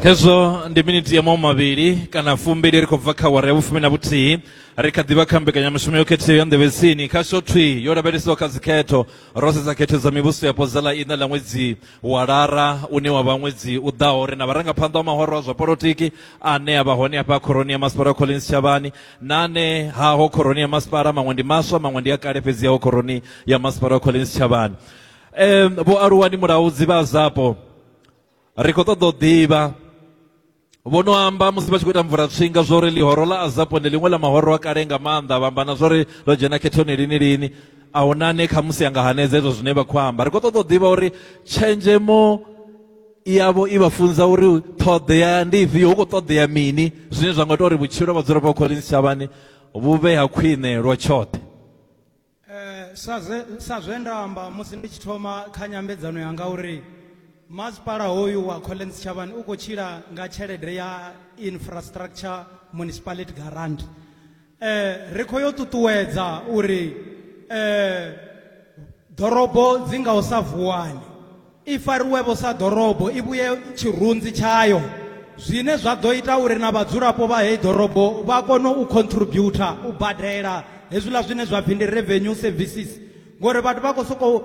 hezwo ndi miniti ya mawu mavhili kana fumbili ri khou bva kha wara ya vhufumi na vhuthihi ri kha ḓivha kha mbekanyamushumo yo khetheaho ya nḓevhetsini kha shothwi yo lavhelesiwa kha dzikhetho ro sedza khetho dza mivhuso yapo dza ḽa ina ḽa ṅwedzi wa lara une wa vha ṅwedzi u ḓaho ri na vharangaphanḓa wa mahoro a zwa polotiki ane a vha hone afha khoroni ya masipala collins shavhani na ane haho khoroni ya masipala maṅwe ndi maswa maṅwe ndi a kale fhedzi yaho khoroni ya masipala collins shavhani em vho aluwani mulaudzi vha zapo ri khou ṱoḓa u ḓivha vho no amba musi vha tshi khou ita mvula tswinga zwa uri ḽihoro ḽa azapo ndi ḽiṅwe ḽa mahoro a kale nga maanḓa vha amba na zwa uri ḽo dzhena khethoni lini lini a hu na ane khamusi a nga hanedza hezwo zwine vha khou amba ri khou ṱoḓa u ḓivha uri tshenzhemo yavho i vha funza uri ṱhoḓea ndi ifhio hu khou ṱoḓea mini zwine zwa nga ita uri vhutshilo ha vhadzulapo vha khoḽini tshitshavhani vhu vhe ha khwine lwa tshoṱhe Eh, sa zwe, sa zwe nda amba musi ndi tshi thoma kha nyambedzano yanga uri masipala hoyu wa collins chavani u khou tshila nga tshelede ya infrastructure municipality garant eh, ri khou yo ṱuṱuwedza uri eh, ḓorobo dzi nga u sa vuwani I fariwe-vho sa ḓorobo, i vhuye tshirunzi tshayo, zwine zwa ḓo ita uri na vhadzulapo vha heyi ḓorobo vha kone u contributer, u badela hezwiḽa zwine zwa pfi ndi revenue services ngori vhathu vha khou sokou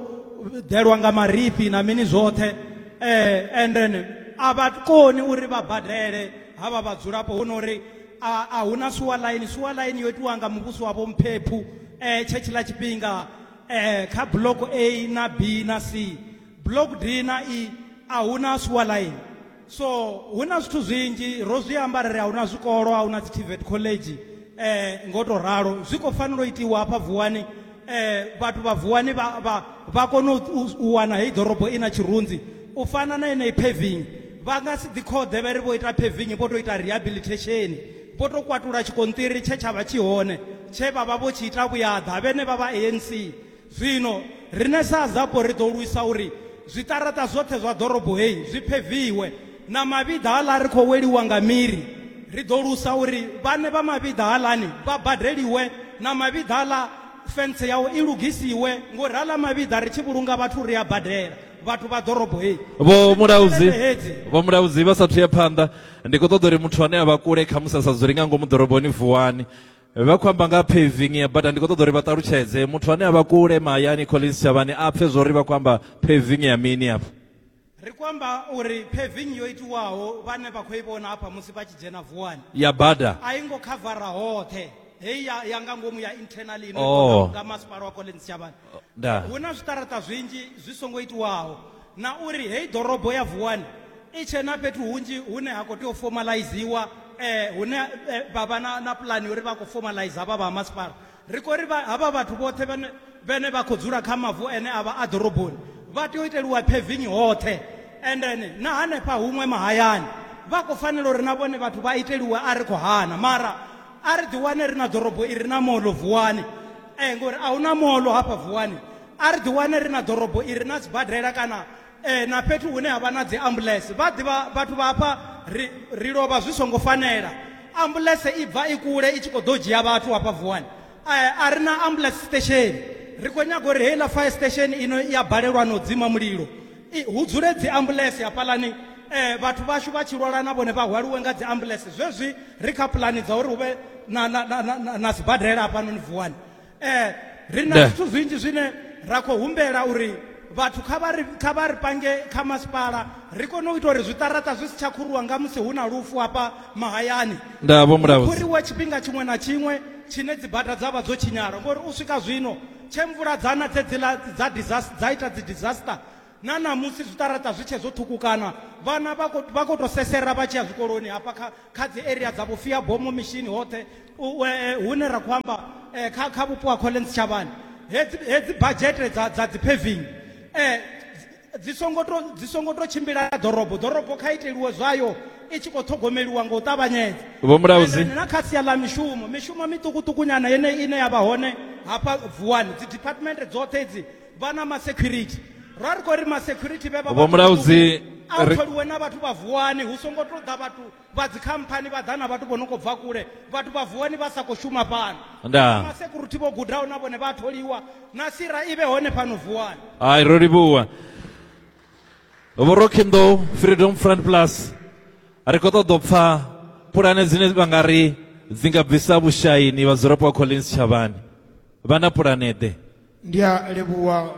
ḓelwa nga marifhi na mini zwoṱhe eh, and then a vha koni uri vha badele havha vhadzulapo hu no uri a a huna suwa line suwa line yo itiwa nga muvhuso wavho mphephu eh tshe tshiḽa tshifhinga Ee, kha block A na B na C, block D na E a huna sewer line. So hu na zwithu zwinzhi ro zwi amba ra ri a huna zwikolo, a huna dzi TVET college eh ngo to ralo. Zwi khou fanela u itiwa hafha Vuwani eh vhathu vha Vuwani vha vha vha kone u- u u wana heyi ḓorobo i na tshirunzi u fana na yeneyi paving vha nga si ḓi khoḓe vha ri vho ita paving vho tou ita rehabilitation Vho tou kwatula tshikonṱiri tshe tsha vha tshi hone tshe vha vha vho tshi ita vhuyaḓa vhenevha vha ANC. Zwino riṋe sa Zapo ri ḓo lwisa uri zwiṱaraṱa zwoṱhe zwa ḓorobo heyi zwi pheviwe na mavhiḓa aḽa ri khou weliwa nga miri. Ri ḓo lwisa uri vhaṋe vha mavhiḓa haḽani vha badeliwe na mavhiḓa aḽa fentse yao i lugisiwe ngori haḽa mavhiḓa ri tshi vhulunga vhathu ri a badela vhathu vha ḓorobo heyi. Vho Mulaudzi vha sa athu ya phanḓa, ndi khou ṱoḓa uri muthu ane a vha kule khamusi a sa dzuli nga ngomu ḓoroboni vuwani vha khou amba nga paving ya bada ndi khou ṱoḓa uri vha ṱalutshedze muthu ane a vha kule mahayani collins tshavhani a pfhe zwo ri vha khou amba paving ya mini afho ri khou amba uri paving yo itiwaho vhane vha khou i vhona hafha musi vha tshi dzhena vuwani ya bada a i ngo khavara hoṱhe heyi ya, ya nga ngomu ya internal ino oh. nga masipala wa collins tshavhani Da. hu na zwiṱaraṱa zwinzhi zwi songo itiwaho na uri heyi ḓorobo ya vuwani i tshe na fhethu hunzhi hune ha khou tea u fomalayiziwa um hune eh, vha vha na, na pulani uri vha khou fomalayiza havha vha ha masipala ri khou ri vha- havha vhathu vhoṱhe vhane vhene vha khou dzula kha mavu ene a vha a ḓoroboni vha tea u iteliwa phevingi hoṱhe and then na hanefha huṅwe mahayani vha khou fanela uri na vhone vhathu vha iteliwe a ri khou hana mara a ri ḓiwane ri na ḓorobo i re na moḽo vuwani um ngori a hu na moḽo hafha vuwani a ri ḓiwane ri na ḓorobo i re na sibadela kana um na fhethu hune ha vha na dzi ambulance vha ḓivha vhathu vha hafha ri ri lovha zwi songo fanela ambulance i bva i kule i tshi khou ḓo dzhia vhathu hafha vuwani um a ri na ambulance station ri khou nyaga uri heiḽa fire station ino i a balelwa na u dzima mulilo hu dzule dzi ambulance hafhaḽani um vhathu vhashu vha tshi lwala na vhone vha hwaliwe nga dzi ambulance zwezwi ri kha pulani dza uri hu vhe na sibadela hafhanoni vuwani um ri na zwithu zwinzhi zwine ra khou humbela uri vhathu kha vha ri kha vha ri pange kha masipala ri kone u ita uri zwiṱaraṱa zwi si tsha khuruwa nga musi hu na lufu hafha mahayani nda vho mulaudzi khuriwa tshifhinga tshiṅwe na tshiṅwe tshine dzi bada dza vha dzo tshinyala ngori u swika zwino Tshe mvula dza na dzedziḽa dza disaster dza ita dzi disaster na ṋamusi zwiṱaraṱa zwi tshe zwo ṱhukukana vhana vha khou vha khou tou sesera vha tshi ya zwikoloni hafha kha kha dzi area dza vhufia bomo mishini hoṱhe hune ra khou amba kha kha vhupo ha Collen Sitshavhani hedzi hedzi badzhete dza dza dzi paving dzi songo to dzi songo to tshimbila ḓorobo ḓorobo kha iteliwe zwayo i tshi khou ṱhogomeliwa nga u ṱavhanyedza vho mulauzi na kha sia ḽa mishumo mishumo miṱukuṱukunyana yeneyi ine ya vha hone hafha vuwani dzi department dzoṱhe idzi vha na masecurity ra ri khou ri masecurity vhe vha vho mulauzi a tholiwe na vhathu vha vuwani hu songo to ḓa vhathu vha dzikhamphani vha ḓa na vhathu vho no khou bva kule vhathu vha vuwani vha sa khou shuma fhano ndaa masekuruthi vho gudaho na vhone vha tholiwa na sira i vhe hone fhano vuwani hai ro livhuwa vhurokhinḓou freedom front plus ri khou ṱoḓa u pfa pulane dzine vha nga ri dzi nga bvisa vhushaini vhadzulapo wa collins tshavhani vha na pulane ḓe ndi a livhuwa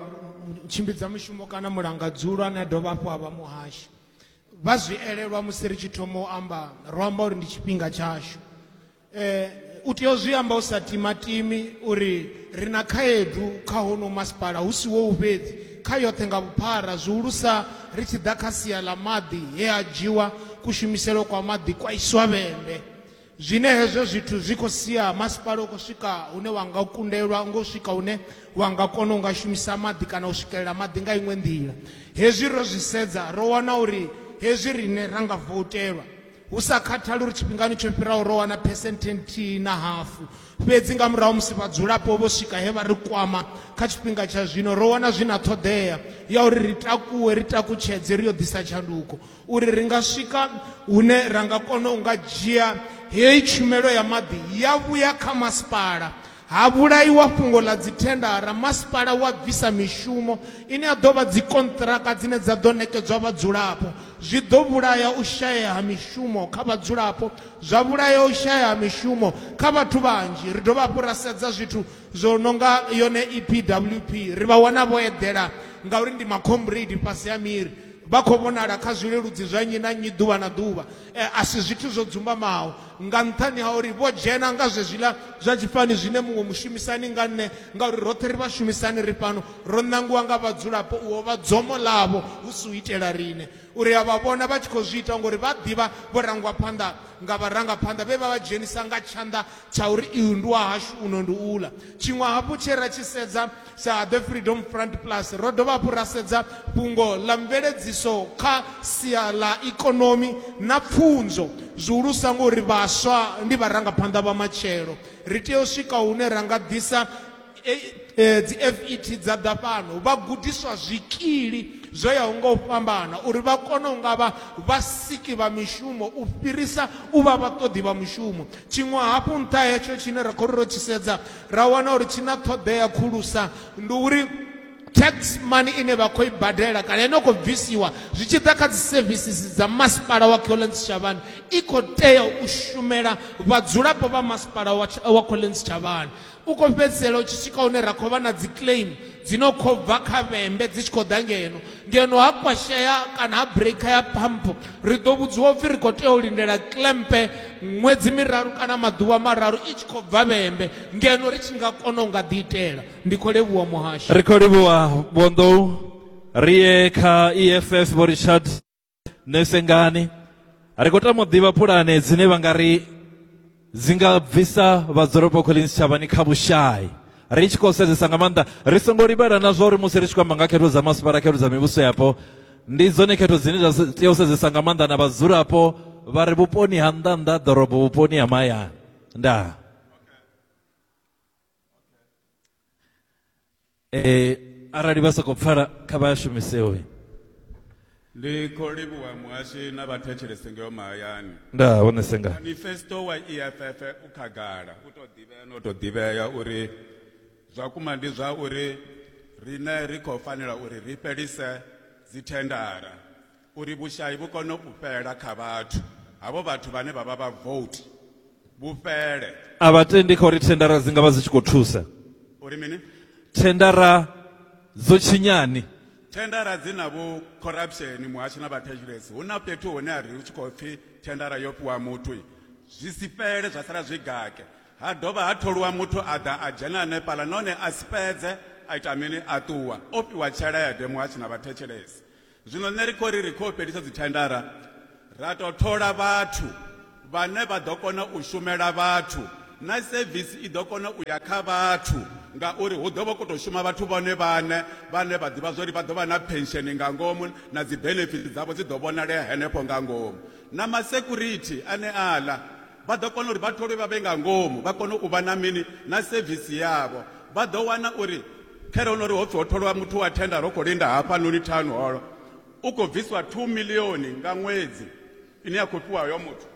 tshimbidza mushumo kana mulangadzulwa ane a dovha hafhu a vha muhashi vha zwi elelwa musi ri tshi thoma u amba ro amba uri ndi tshifhinga tshashu um u tea u zwi amba u sa timatimi uri ri na khaedu kha hono masipala hu si wou fhedzi kha yoṱhe nga vhuphara zwihulusa ri tshi ḓa kha sia ḽa maḓi he a dzhiwa kushumiselo kwa maḓi kwa iswa vhembe Zwine hezwo zwithu zwi khou sia, masipala u khou swika hune wa nga kundelwa ngo swika hune wa nga kona u nga shumisa maḓi kana u swikelela maḓi nga iṅwe nḓila. Hezwi ro zwi sedza, ro wana uri hezwi riṋe ra nga voutelwa, hu sa khathali uri tshifhingani tsho fhiraho ro wana phesenthe nthihi na hafu, fhedzi nga murahu musi vhadzulapo vho swika he vha ri kwama, kha tshifhinga tsha zwino ro wana zwi na ṱhoḓea ya uri ri takuwe, ri takutshedze, ri yo ḓisa tshanduko. uri ri nga swika hune ra nga kona u nga dzhia heyi tshumelo ya maḓi ya vhuya kha masipala ha vhulaiwa fhungo ḽa dzithendara masipala wa bvisa mishumo ine ya ḓo vha dzikonṱiraka dzine dza ḓo ṋekedzwa vhadzulapo zwi ḓo vhulaya u shayea ha mishumo kha vhadzulapo zwa vhulaya u shayea ha mishumo kha vhathu vhanzhi ri dovha hafhu ra sedza zwithu zwo no nga yone epwp ri vha wana vho eḓela ngauri ndi makhombredi fhasi ha miri Vha khou vhonala kha zwileludzi zwa nnyi na nnyi ḓuvha na ḓuvha. E, a si zwithu zwo dzumbamaho, nga nṱhani ha uri vho dzhena nga zwezwiḽa zwa tshifhani zwine muṅwe mushumisani nga nṋe, ngauri roṱhe ri vhashumisani ri fhano, ro ṋangiwa nga vhadzulapo u ovha dzomo ḽavho, hu si u itela riṋe. Uri a vha vhona vha tshi khou zwi ita ngori vha ḓivha vho rangwa phanḓa nga vharangaphanḓa vhe vha vha dzhenisa nga tshanḓa tsha uri, Iyu ndi wa hashu, uno ndi uḽa. Tshiṅwe hafhu tshe ra tshi sedza, Sa The Freedom Front Plus, ro dovha hafhu ra sedza fhungo ḽa mveledziso kha sia ḽa ikonomi na pfunzo, zwihulusa ngori vhaswa ndi vharangaphanḓa vha matshelo. Ri tea u swika hune ra nga ḓisa dzi FET dza ḓa fhano vha gudiswa zwikili zwo yaho nga u fhambana uri vha kone u nga vha vhasiki vha mishumo u fhirisa u vha vhaṱoḓi vha mushumo. Tshiṅwe hafhu nṱha hetsho tshine ra khou ri ro tshi sedza ra wana uri tshi na ṱhoḓea khulusa ndi uri tax money ine vha khou i badela kana ine khou bvisiwa zwi tshi ḓa kha dzi services dza masipala wa collins chavhani i khou tea u shumela vhadzulapo vha masipala wa collins chavhani u khou fhedzisela u tshi swika hune ra khou vha na dzi claim dzi no khou bva kha vhembe dzi tshi khou ḓa ngeno ngeno ha kwashea kana ha breaker ya pamp ri ḓo vhudziwa upfhi ri khou tea u lindela klempe ṅwedzi miraru kana maḓuvha mararu i tshi khou bva vhembe ngeno ri tshi nga kona u nga ḓi itela ndi khou livhuwa muhasho ri khou livhuwa vhonḓou ri ye kha eff vho richard nṋe sengani ri khou tama u ḓivha pulane dzine vha nga ri dzi nga bvisa vhadzulapo collins tshavhani kha vhushai ri tshi khou sedzesa nga maanḓa ri songo livhela na zwa uri musi ri tshi khou amba nga khetho dza masipala khetho dza mivhuso yapo ndi dzone khetho dzine dza tea u sedzesa nga maanḓa na vhadzulapo vha re vhuponi ha nnḓa nnḓa ḓorobo vhuponi ha mahayani ndaa eh arali vha soko pfala kha vha shumise hoyi ndi khou livhuwa muhashi na vhathetshelesi ngeo mahayani nda hone senga manifesto wa eff u khagala u tou ḓivhea no tou ḓivhea uri zwa kuma ndi zwa uri riṋe ri khou fanela uri ri fhelise dzithendara Uri vhushai vhu kone u fhela kha vhathu, havho vhathu vhane vha vha vhavouti, vhu fhele. A vha tendi kha uri thendara dzi nga vha dzi tshi khou thusa. Uri mini? Thendara dzo tshinyani. Thendara dzi na vhu corruption muhasho na vhathetshelesi. Hu na fhethu hune a ri hu tshi khou pfi thendara yo fhiwa muthu zwi si fhele zwa sala zwi gake. Ha dovha ha tholiwa muthu a ḓa a dzhena hanefhaḽa nahone a si fhedze a ita mini a ṱuwa o fhiwa tshelede muhasho na vhathetshelesi. Zwino nṋe ri khou ri ri khou fhelisa dzithendara ra tou thola vhathu vhane vha ḓo kona u shumela vhathu na sevisi i ḓo kona u ya kha vhathu ngauri hu ḓo vha khou tou shuma vhathu vhone vhaṋe vhane vha ḓivha zwori vha ḓo vha na pensheni nga ngomu na dzi benefiti dzavho dzi ḓo vhonalea henefho nga ngomu na masecurity ane aḽa Vha ḓo kona uri vha tholwe vha vhe nga ngomu, vha kone u vha na mini? Na sevisi yavho. Vha ḓo wana uri khare ho no ri ho pfi ho tholwa muthu wa thenda ro khou linda hafhanoni Town Hall, u khou bviswa thuu miḽioni nga ṅwedzi ine ya khou fhiwa hoyo muthu.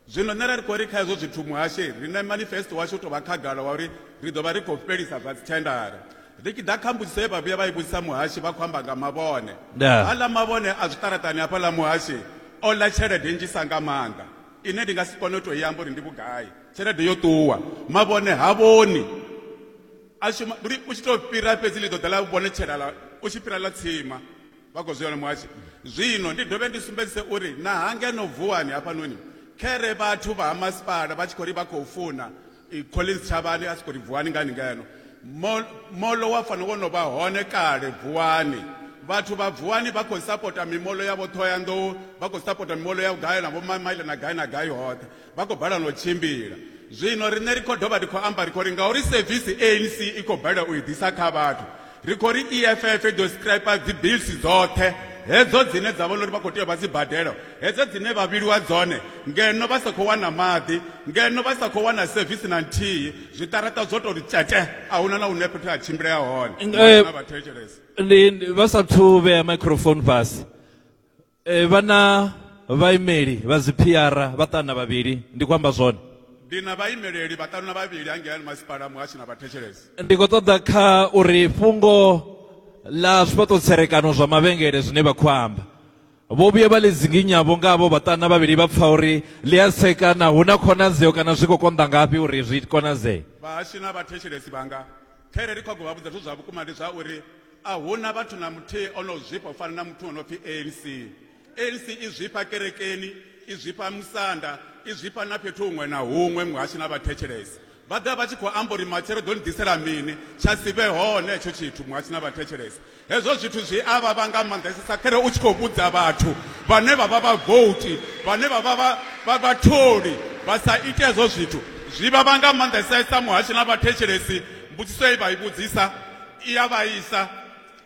Zwino nṋe ra ri khou ri kha hezwo zwithu muhashe ri na manifesto washu u tou vha khagala wa uri ri ḓo vha ri khou fhelisa zwa dzithendara. Ri tshi ḓa kha mbudziso ye vha vhuya vha i vhudzisa muhashe vha khou amba nga mavhone. Ndaa. Aḽa mavhone a zwiṱaraṱani hafhaḽa muhashe o ḽa tshelede nnzhisa nga maanḓa. ine ndi nga si kone u tou i amba uri ndi vhugai tshelede yo ṱuwa mavhone ha vhoni a shuma uri u tshi tou fhira fhedzi ḽi ḓo ḓa ḽa vhone tshelala u tshi fhira ḽa tsima vha khou zwi muhasho zwino ndi dovhe ndi sumbedzise uri na hangeno vuwani hafhanoni khere vhathu vha ha masipala vha tshi khou ri vha khou funa i Collins Tshavhani a tshi khou ri vuwani ngani ngeno moḽo wa fanela wo no vha hone kale vuwani vhathu vha vuwani vha khou sapota mimoḽo ya vhoṱhohoyanḓou vha khou sapota mimoḽo ya gai na vhomamaile na gai na gai hoṱhe vha khou balelwa u tshimbila zwino riṋe ri khou dovha ri khou amba ri khou ri ngauri sevisi anc i khou balelwa u i ḓisa kha vhathu ri khou ri eff i ḓo stripa dzibisi dzoṱhe hedzo dzine dza vhona uri vha khou tea vha dzi badela hedzo dzine vha vhiliwa dzone ngeno vha sa khou wana maḓi ngeno vha sa khou wana sevisi na nthihi zwiṱaraṱa zwo tou tshete a huna na hune fhethu ha tshimbilea hone eh, na vhathetshelesi vha sa thu vhea microphone fhasi e, vha na vhaimeli vha dziphiara vhaṱanu na vhavhili ndi khou amba zwone ndi na vhaimeleli vhaṱanu na vhavhili hangeani masipala muhasho na vhathetshelesi ndi khou ṱoḓa kha uri fhungo ḽa zwifhaṱo tserekano zwa mavhengele zwine vha khou amba vho vhuya vha ḽi dzinginyavho nga avho vhaṱanu na vhavhili vha pfa uri ḽi a tsekana hu na khonadzeo kana zwi khou konḓa ngafhi uri zwi konadzee vhahashu na vhathetshelesi vhanga khaire ri khou vha vhudza zwo zwa vhukuma ndi zwa uri A hu na vhathu na muthihi o no zwifha u fana na muthu o no pfi ANC. ANC i zwifha kerekeni, i zwifha musanda, i zwifha na fhethu huṅwe na huṅwe muhashi na vhathetshelesi. Vha ḓa vha tshi khou amba uri matshelo ḓo ni ḓisela mini, tsha si vhe hone hetsho tshithu muhashi na vhathetshelesi. Hezwo zwithu zwi a vhavha nga maanḓesesa khare u tshi khou vhudza vhathu vhane vha vha vhavouti, vhane vha vha vha vhatholi vha sa ite hezwo zwithu. Zwi vhavha nga maanḓesesa muhashi na vhathetshelesi mbudziso ye vha i vhudzisa. i ya vhaisa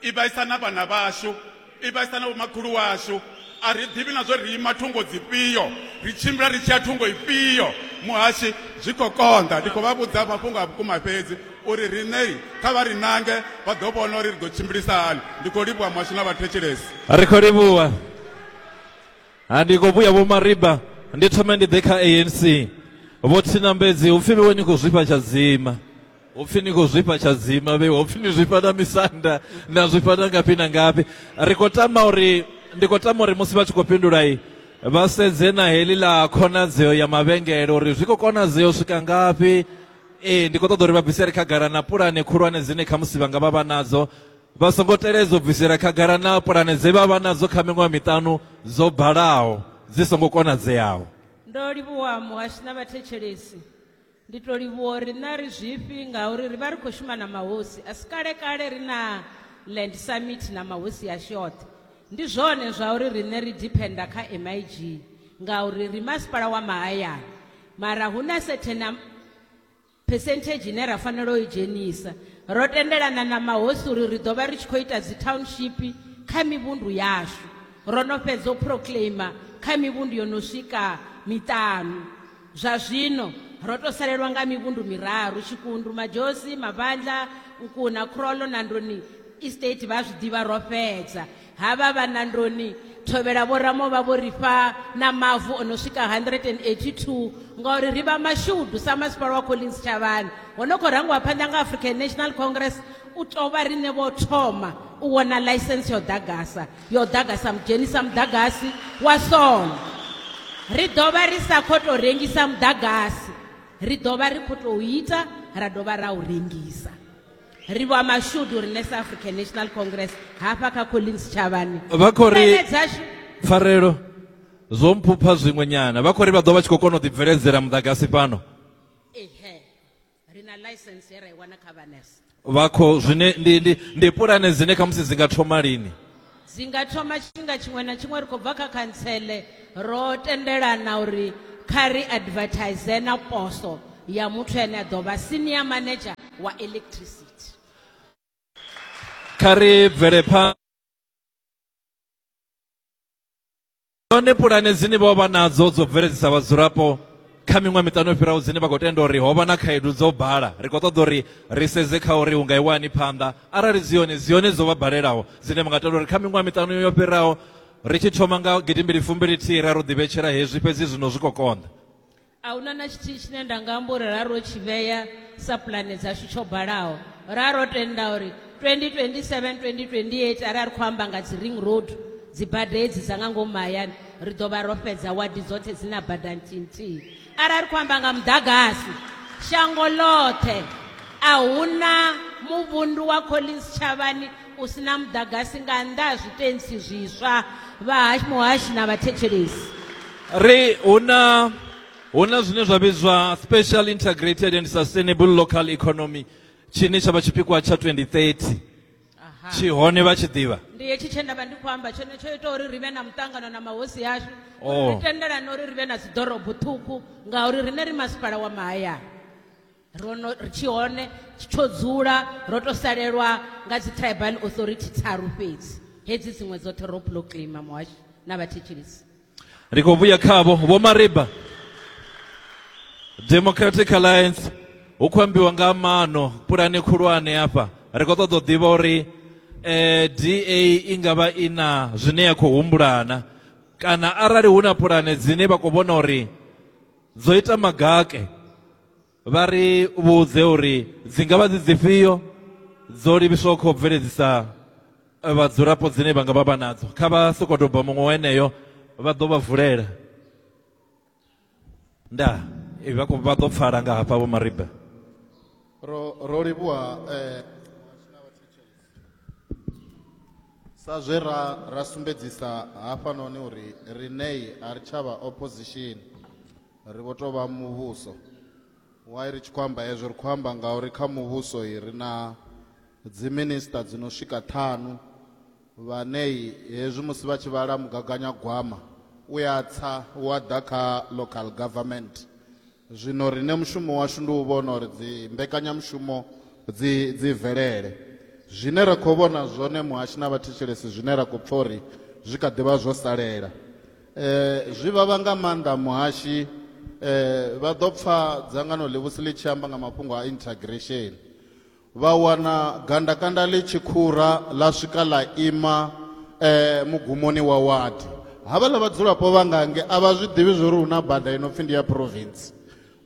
i vhaisa na vhana vhashu i vhaisa na vhomakhulu washu a ri ḓivhi na zwo ri ima thungo dzifhio ri tshimbila ri tshi ya thungo ifhio muhashi zwi khou konḓa ndi khou vha vhudza mafhungo a vhukuma fhedzi uri riṋei kha vha ri nange vha ḓo vhona uri ri ḓo tshimbilisa hani ndi khou livhuwa muhashi na vhathetshelesi ri khou livhuwa ha ndi khou vhuya vho mariba ndi thome ndi ḓe kha anc vho thinambedzi hupfi vhewe ni khou zwifha tshadzima hopfi ni khou zwifha tshadzima vhe hopfi ni zwifha na misanda na zwifha na ngafhi na ngafhi ri khou tama uri ndi khou tama uri musi vha tshi khou fhindulai vha sedze na heḽi ḽa khonadzeo ya mavhengele uri zwi khou konadzea u swika ngafhi ee ndi khou ṱoḓa uri vha bvisele khagala na pulane khulwane dzine khamusi vha nga vha vha nadzo vha songo teledza u bvisela khagala na pulane dze vha vha nadzo kha miṅwaha miṱanu dzo balaho dzi songo konadzeaho ndo livhuwa muhashi na vhathetshelesi Ndi to livhuwa uri na ri zwifhi ngauri ri vha ri khou shuma na mahosi a si kale kale ri na land summit na mahosi ya shoṱhe ndi zwone zwa uri riṋe ri dependa kha MIG ngauri ri masipala wa mahayani mara hu na certain percentage ine ra fanela u i dzhenisa ro tendelana na mahosi uri ri ḓo vha ri tshi khou ita dzi township kha mivhundu yashu ro no fhedza u proclaima kha mivhundu yo no swika miṱanu Zwa zwino, ro tou salelwa nga mivhundu miraru, Tshikundu, Madzhosi, Mavhandla, Nkuna, Khrolo, na Ndoni Estate, vha a zwi ḓivha, ro fhedza. Havha vha na Ndoni Thovhela vho Ramo vha vho ri fha na mavu o no swika 182, ngauri ri vha mashudu sa Masipala wa Collins Tshavhani, ho no khou rangiwa phanḓa nga African National Congress, u tou vha riṋe vho thoma u wana ḽaisentsi ya u ḓagasa. yo ḓaga sa mudzheni sa muḓagasi wa sono ri dovha ri sa khou tou rengisa muḓagasi ri dovha ri khou tou ita ra dovha ra u rengisa ri vha mashudu rine sa african national congress hafha kha collins tshavhani vha khou ri pfarelo zwo mphupha zwiṅwe nyana vha khou ri vha ḓo vha tshi khou kona u ḓibveledzela muḓagasi fhano ri na ḽaisense ye ra i wana kha vha nurse vha khou zwine ndi, ndi, ndi pulane dzine khamusi dzi nga thoma lini dzi nga thoma tshifhinga tshiṅwe na tshiṅwe ri khou bva kha khantsele ro tendelana uri kha ri advertise na poso ya muthu ane a ḓo vha senior manager wa electricity kha ri bvele phanḓa Hone pulane dzine vho vha nadzo dzo bveledzisa vhadzulapo kha miṅwaha miṱanu yo fhiraho dzine vha khou tenda uri ho vha na khaedu dzo bala. Ri khou ṱoḓa uri ri sedze kha uri hu nga iwa hani phanḓa. Arali dzi hone, dzi hone dzo vha balelaho dzine vha nga tenda uri kha miṅwaha miṱanu yo fhiraho ri tshi thoma nga gidimbili fumbili thihi ra ri u ḓivhetshela hezwi fhedzi zwino zwi khou konḓa. A hu na na tshithihi tshine nda nga amba uri ra ro tshi vhea sa pulane dzashu tsho balaho ra ro tenda uri 2027 2028 arali ri khou amba nga dzi ring road dzi bada hedzi dza nga ngomu mahayani ri ḓo vha ro fhedza wadi dzoṱhe dzi na bada nthihi nthihi arali ri khou amba nga muḓagasi shango ḽoṱhe a hu na muvhundu wa collins tshavhani u si na muḓagasi nga nnḓa ha zwitentsi zwiswa vha muhashi na vhathetshelesi. Ri hu na hu na zwine zwa vhidzwa Special Integrated and Sustainable Local Economy tshine tsha vha tshipikwa tsha 2030 tshi hone vha tshi ḓivha ndi hetshi tshe ndavha ndi khou amba tshone tsho ita uri ri vhe na muṱangano na mahosi ashu oh. ri tendelane uri ri vhe na dziḓorobo ṱhukhu ngauri riṋe ri masipala wa mahayani ro no ri tshi hone tsho dzula ro to salelwa nga dzi tribal authority tharu fhedzi hedzi dziṅwe dzoṱhe ro pulo kilima muhashi na vhathetshelisi ri khou vhuya khavho vho mariba democratic alliance hu khou ambiwa nga mano pulane khulwane hafha ri khou ṱoḓa u ḓivha uri eh, da i nga vha i na zwine ya khou humbulana kana arali hu na pulane dzine vha khou vhona uri dzo ita magake vha ri vhudze uri dzi nga vha dzi dzifhio dzo livhiswaho khou bveledzisa eh, vhadzulapo dzine vha nga vha vha nadzo kha vha sokodoba muṅwe weneyo vha ḓo vha vulela nda eh, vha vha ḓo pfala nga hafha vho mariba ro ro livhuwa eh, sa zwe ra ra sumbedzisa hafhanoni uri rinei a ri tshavha opposition Ri vho tou vha muvhuso. Why ri tshi khou amba hezwo? Ri khou amba ngauri kha muvhuso i ri na dziminisiṱa dzi no swika ṱhanu vhane hezwi musi vha tshi vhala mugaganyagwama u ya tsa wa ḓa kha local government. Zwino riṋe mushumo washu ndi u vhona uri dzi mbekanyamushumo dzi dzi bvelele. Zwine ra khou vhona zwone muhashi na vhathetshelesi zwine ra khou pfha uri zwi kha ḓi vha zwo salela Eh, zwi vhavha nga maanḓa muhashi eh, vha ḓo pfa dzangano ḽivhusi ḽi tshi amba nga mafhungo a integration vha wana gandakanda ḽi tshi khura ḽa swika ḽa ima eh, mugumoni wa wadi havhaḽa vhadzulapo vha ngange a vha zwi ḓivhi zwo ri hu na bada i no pfhi ndi ya province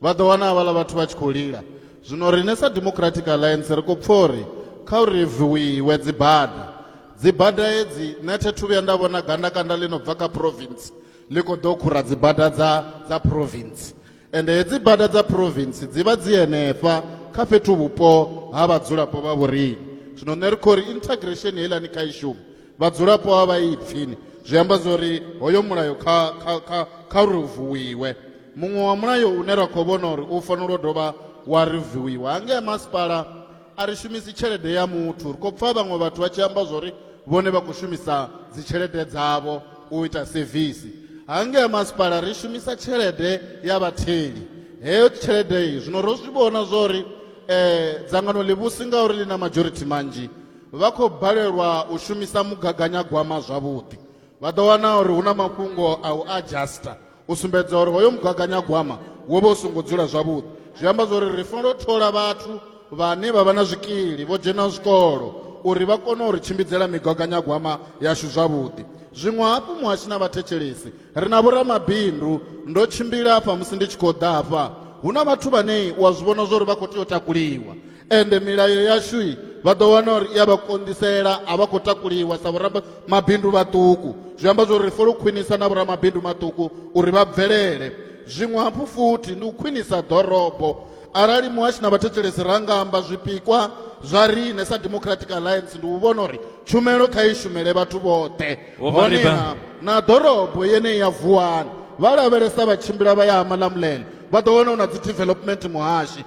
Vha ḓo wana havhaḽa vhathu vha tshi khou lila. Zwino riṋe sa Democratic Alliance ri khou pfa uri kha u reviwiwe dzibada. Dzibada hedzi nṋe thi thu vhuya nda vhona gandakanda ḽi no bva kha province ḽi khou ḓo khura dzibada dza dza province. Ende hedzi bada dza province dzi vha dzi henefha kha fhethu vhupo ha vhadzulapo vha vhoriṋe. Zwino nṋe ri khou ri integration heiḽani kha i shume. vhadzulapo a vha ipfini zwi amba zwori hoyo mulayo kha kha kha kha uri vuwiwe muṅwe wa mulayo une ra khou vhona uri u fanela u dovha wa ri vuwiwa hangea masipala a ri shumisi tshelede ya muthu ri khou pfha vhaṅwe vhathu vha tshi amba zwori vhone vha khou shumisa dzitshelede dzavho u ita sevisi hangea masipala ri shumisa tshelede ya vhatheli heyo tshelede iyi zwino ro zwi vhona zwori um dzangano ḽivhusi ngauri ḽi na majority manzhi vha khou balelwa u shumisa mugaganyagwama zwavhuḓi vha ḓo wana uri hu na mafhungo a u adjuster u sumbedza uri hoyo mugaganyagwama wo vha u songo dzula zwavhuḓi zwi amba zwori ri fanela u thola vhathu vhane vha vha na zwikili vho dzhena zwikolo uri vha kone uri tshimbidzela migaganyagwama yashu zwavhuḓi zwiṅwe hafhu muhashi na vhathetshelesi ri na vhoramabindu ndo tshimbila hafha musi ndi tshi khou ḓa hafha hu na vhathu vhane wa zwi vhona zwori vha khou tea u takuliwa ende milayo yashu i vha ḓo wana uri i a vha konḓisela a vha khou takuliwa sa vhoraba mabindu vhaṱuku zwi amba zwa uri ri fanela u khwinisa na vhoramabindu maṱuku uri vha bvelele zwiṅwe hafhu futhi ndi u khwinisa ḓorobo arali muhashi na vhathetshelesi ra nga amba zwipikwa zwa riṋe sa democratic alliance ndi u vhona uri tshumelo kha i shumele vhathu vhoṱhe honeha na ḓorobo yeneyi ya vuwani vha lavhelesa vha tshimbila vha ya ha malamulele vha ḓo wana hu na dzi development muhashi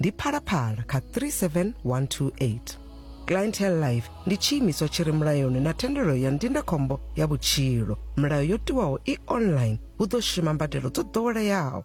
ndi phalaphala kha 37128 clientele life ndi tshiimiswa tshi re mulayoni na thendelo ya ndindakhombo ya vhutshilo milayo yo tiwaho i online hu ḓo shuma mbadelo dzo ḓoweleaho